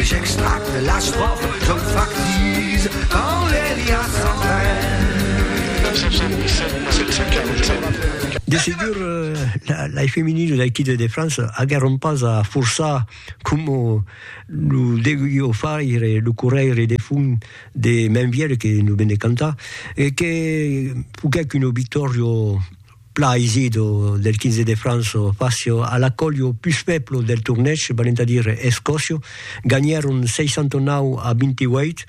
J'extracte l'estròfa, jo factise quand l'Elia s'en va. De segur, lai feminin de l'Equipe de França aguèron pas a forçar coma lo deguió faire lo corrèire de fum de Mainvièlh que nos ven de cantar e que foguèc una victòria Pla Isido del 15 de Franço Facio a l'acolho pus fèblo del tornèch, valent a dire Escòcio, ganhèron 69 a 28.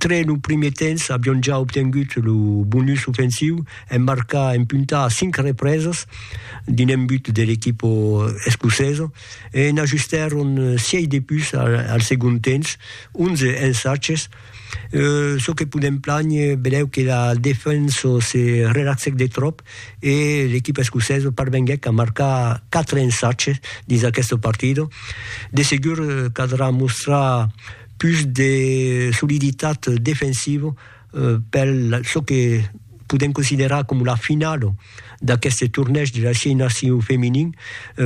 Tre lo primier temps avion ja obtengut lo bonus ofensiu en marcar en punta a 5 represas dins un but de l'equipa escocesa e n'ajustèron 6 de pus al segond temps, 11 ensaches. Çò que podèm planher, benlèu que la defensa se relaxèc de tròp e l'equipa escocesa parvenguèc a marcar 4 ensatges dins aquesta partida. De segur caldrà mostrar pus de soliditat defensiva per çò que podèm considerar coma la finala d'aqueste tornèig de las 6 nacions feminin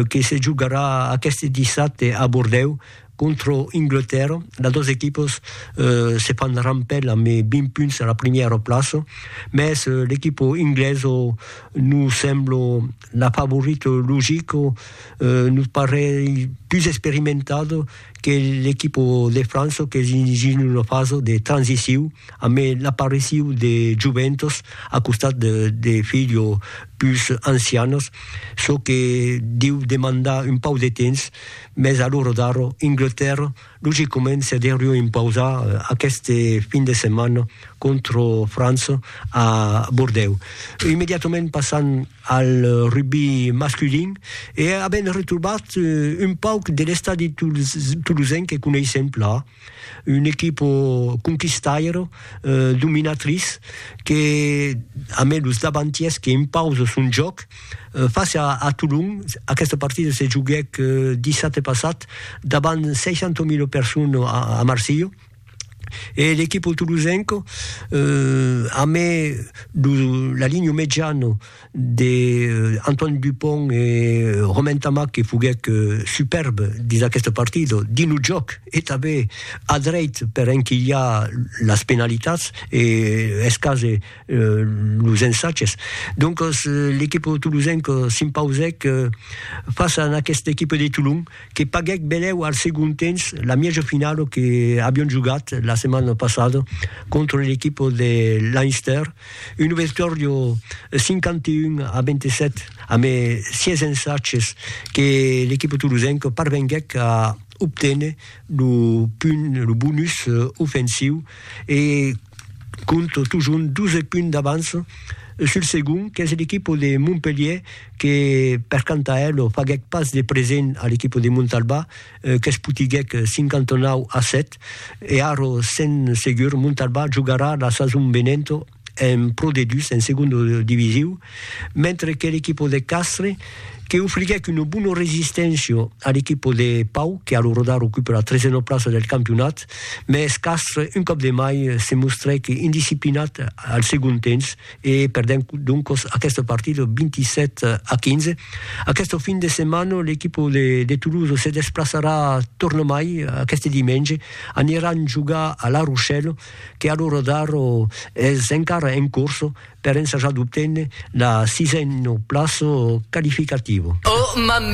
que se jogarà aqueste dissabte a Bordèu Contra Anglatèrra, las dos equipas se fan rampèl amb 20 punts a la primièra plaça, mès l'equipa inglesa nos sembla la favorita logica, nos parei pus experimentada que l'equipa de França qu'es dins una fasa de transiciu amb l'apariciu de joventas a costat de filhas pus ancianas, çò que deu demandar un pauc de temps. Mès a l'ora d'ara, Inglatèrra logicament se deurió impausar aqueste fin de setmana contra França a Bordèu. Immediatament passam al rugbi masculin e avèm retrobat un pauc de l'estadi tolosenc que coneissèm plan. Un equipo conquistairo, dominatriç, que a mai los davantiers que impausa son jòc. Fàcia a Tolon, aquesta partida se joguèc dissabte passat davant 60.000 personas a Marsilha e l'equipo tolosenca, a mai la linha mediana de Antoine Dupont e Romain Tamac que foguèc superbe dins aqueste partido, dins lo jòc e tanben a dreit per enquilhar las penalitats e escaser los ensatges. Doncas l'equipe tolosenca s'impausèc fàcia a aquesta equipe de Tolon que paguèc benlèu al segond temps la mièja finala que avián jogat la setmana passada contra l'equipe de Leinster. Un obestòrdio 51 a 27 amé 6 ensatges que l'equipa tolosenca parvenguèc a obténer lo punt, lo bonus ofensiu e compte totjorn 12 punts d'avança sul segond qu'es l'equipa de Montpelhièr que per canta ela faguèc pas de present a l'equipa de Montalbà qu'es putiguèc 59 a 7 e Aro sen segur Montalbà jogarà la sason venenta en Pro D2 en segonda divisiu mentre que l'equipa de Castres que ofriguèc una bona resisténcia a l'equipa de Pau que alorada recupe la tresena plaça del campionat mès Castres un còp de mai se mostrèc indisciplinat al segon temps e perdent doncos aqueste partido 27 a 15. Aqueste fin de setmana l'equipa de Toulouse se desplaçarà tornamai aqueste dimenge, aniran jogar a La Rochelle que a l'ora d'ara es encara en corsa per ensajar d'obténer la sisena plaça qualificativa.